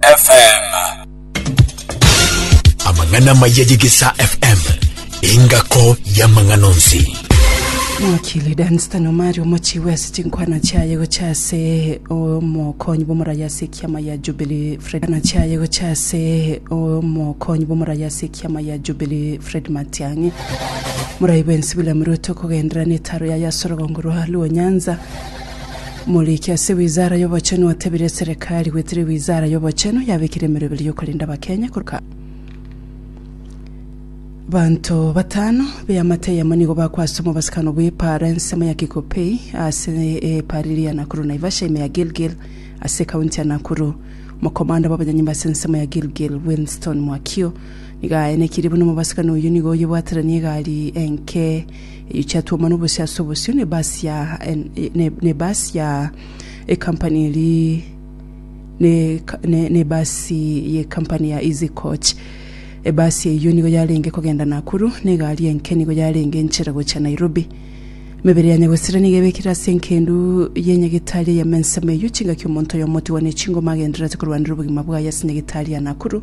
FM. amang'ana amaya y'egesa fm engako y'amang'ana onsi Mwakili Dunstan Omari omochi wese chinkwana chiaye gocha ase omokonyi bw'omorari ase ekiama ya Jubilee Fred Kana chiaye gocha ase omokonyi bw'omorari ase ekiama ya Jubilee Fred Matiang'i morai bwensi William Ruto kogenderera n'etaro yaye ase orogongo rwa Luo Nyanza Omoriki ase Wizara y'Obochenu otebirie eserekari gwetiria Wizara y'Obochenu yabekire emerwa ebere y'okorenda Abakenya korwa abanto batano b'eamate eyemo nigo bakwa ase omobasikano bw'epaara ensemo ya Kikopey ase epaara eria ya Nakuru Naivasha ime ya Gilgil ase ekaunti ya Nakuru. Omokomanda bw'abanyanyimba ase ensemo ya Gilgil Wilnston Mwakio nigo aenekirie buna omobasikano oyio nigo oyebwateranie egari enke Eyio chiatwomwa nobosie ase obosio ne bus ya ne bus ya ecompany eri ne ne bus ye company ya easy coach ebasi eyio nigo yarenge kogenda Nakuru ne egari enke nigo yarenge enchera gocha Nairobi Emebere ya Nyagosera nigo ebekire ase enkendu ye nyagetari eya mensemo eyio chingaki omonto oyomo otigwa ne chingoma agendererete korwanera obogima bwaye ase nyagetari ya Nakuru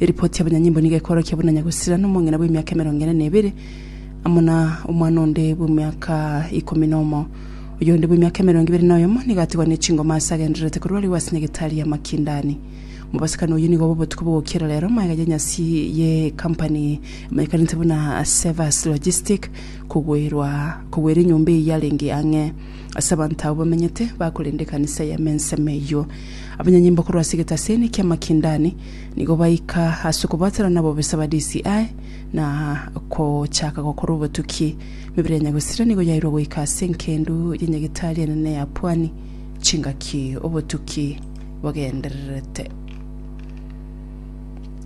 Eripoti y'abanyanyimbo nigo ekorokia buna nyagosirani omong'ina bw'emiaka emerongo ene na ebere amo na omwana onde bw'emiaka ikomi nomo. Oyonde bw'emiaka emerongo ebere na oyomo nigo atigwa ne chingoma aase agendererete korwa arigwe ase nyagetari ya makindani. Omobasibani oyio nigo obe obotuko bw'ogokiera rero maega y'enyasi ye kampani emanyekanete buna Sevas Logistic kogwerwa kogwera enyomba eyio yarenge ang'e ase abanto abwo bamenyete bakorenda ekanisa ya Menseme eyio. Abanyanyimbo korwa ase egetaseni kia makindani Nigo baika ase okobwatana nabobisa ba DCI na gochaka gokora obotuki. Emebere ya Nyagosira nigo yairwe goika ase enkendu ya Nyagetari enene ya Pwani. Chingaki obotuki bogendererete.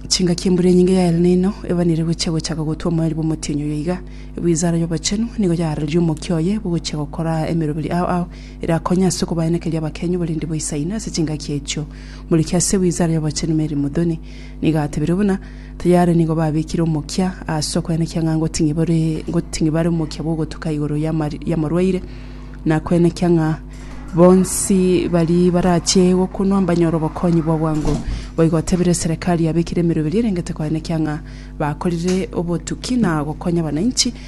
Chingaki embura enyinge ya El Nino ebanire gochia gochaka gotwa omoeri bw'omotienyi oyo iga. Ewizara y'Obochenu nigo yaarereria omokia oye bw'ogochia gokora emeroberi ao ao erakonye ase okobaenekeria abakenyu oborindi bwa Isaino ase chingaki echio. Morikia ase Wizara y'Obochenu Mary Muthoni nigo atebirie buna tari are nigo babekire omokia ase okoenekia ng'a ngoting'ibare omokia bw'ogotuka igoro y'amorwaire na koenekia ng'a bonsi baria barache gokunwa mbanyore obokonyi bw'obwango. Boigo otebirie serekari yabekire emeroberio erengete koenekia ng'a bakorire obotuki na gokonya abananchi.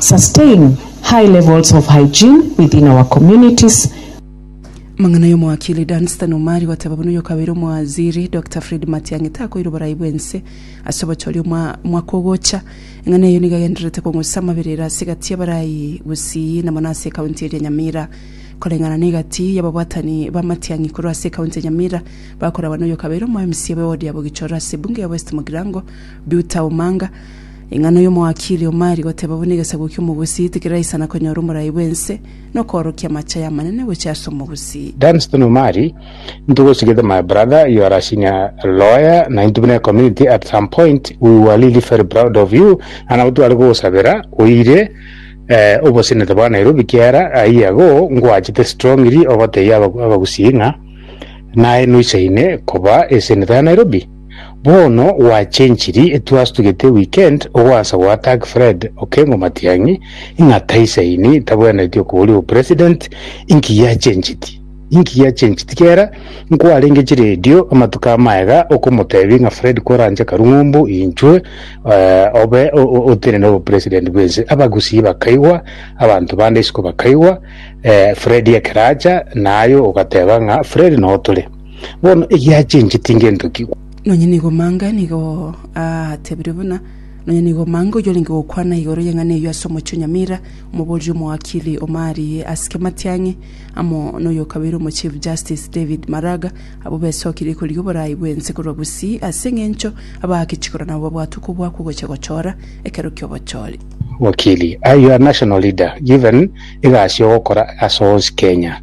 Sustain high levels of hygiene within our communities. Amang'ana y'omowakili Dunstan Omari goteba buna oyokabeire omowaziri Doctor Fred Matiang'i takoire oborai bw'ense ase obochori omwa mwaka ogocha, eng'ana eyio nigo egendererete kong'usa amabera ere ase egati y'abarai Gusii na mono ase ekaunti eria Nyamira. Koreng'ana na egati y'ababwatani ba Matiang'i korwa ase ekaunti ya Nyamira bakoragwa na oyokabeire omo mca b'ewodi ya Bogichoro ase ebunge ya West Mugirango Duta Omanga, Ing'ana oyomo o akili omari goteba buna egesaku ki'omogusii tikeraisana konyora omorai bw'ense, na okoorokia amache y'amanene gochia ase omogusii. Dunstan Omari, Into go sigete my brother you are a senior lawyer na into buna ecommunity at some point we were really very proud of you na nabo tware kogosabera oire eh obosenete bwa Nairobi kiara ayie ago ngoachete strongly ogotebia abagusii ng'a naye noisaine koba eseneta ya Nairobi. Bono gwachenchiri twastugete weekend ogoansa goa tag Fred Okengo Matiang'i ng'a taisaini tabwenereti okoboria obo president inki giachenchiti inki giachenchiti kera nkwarenge chiredio amatuko amaye iga okomotebi ng'a Fred koranche karung'umbu inchwe eh, obe o- o- otenene obo president bwense abagusii bakaigwa abanto bande isiko bakaigwa eh, Fred ekeracha naye ogateba ng'a Fred notore Bono egiachenche tingento ki? Nonya nigo mange nigo atebirie buna, nonya nigo mange oyio orenge gokwana igoro y'eng'ana eyio ase omochie o Nyamira, omoboria omoakiri omarigie ase Kimatiang'i, amo noyokabeire omochief justice David Maraga, abwo besokirie korigia oboraai bw'ense korwa Gusii ase eng'encho abaake chikoro nabo babwate okobua kw'ogocha gochora ekero ki'obochori. Wakili, Are you a national leader given egasi ogokora ase onsi Kenya?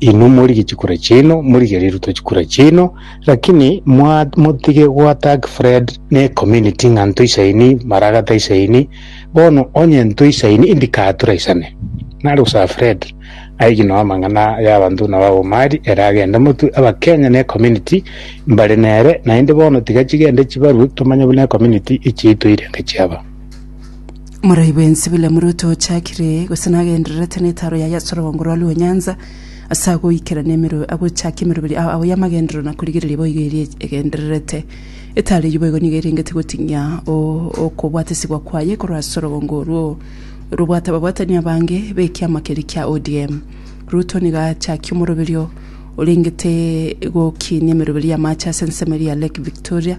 Inwe morigie chikura chiaino, morigie riria rutwa chikura chiaino, lakini mwa motige goattack Fred ne community ng'a ntoisaini maraga taisaini, bono onye ntoisaini indikaha toraisane. Nare gosaba Fred aigie noo amang'ana ya abanto buna ba Omari ere agende motwe abakenya ne community mbare nere naende bono tiga chigende chibarwe tomanye buna ecommunity echiaito eirenge chiaba. Morai bwensi bula muruto ochakire, gose nagendererete netaro yaye ase orogongo rwa rwenyansa, ase agoikerana emeru, agochaka emeroberi ao ao y'amagenderero na korigereria boigo eria egendererete. Etaro eyio boigo nigo erengete goting'ia o- okobwatesigwa kwaye korwa ase orogongo orwo robwate ababwatani abange b'ekiama keria kia ODM. Ruto nigo achakia omoroberi o- orengete gokinia emeroberi y'amache ase ensemo eria ya Lake Victoria,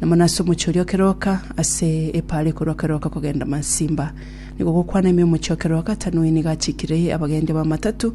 Na mono ase omochie oria o keroka, ase epaara ekorwa keroka kogenda Mansimba, nigo gokwana ime omochie o keroka, Tanui nigo achikire abagendia b'amatatu,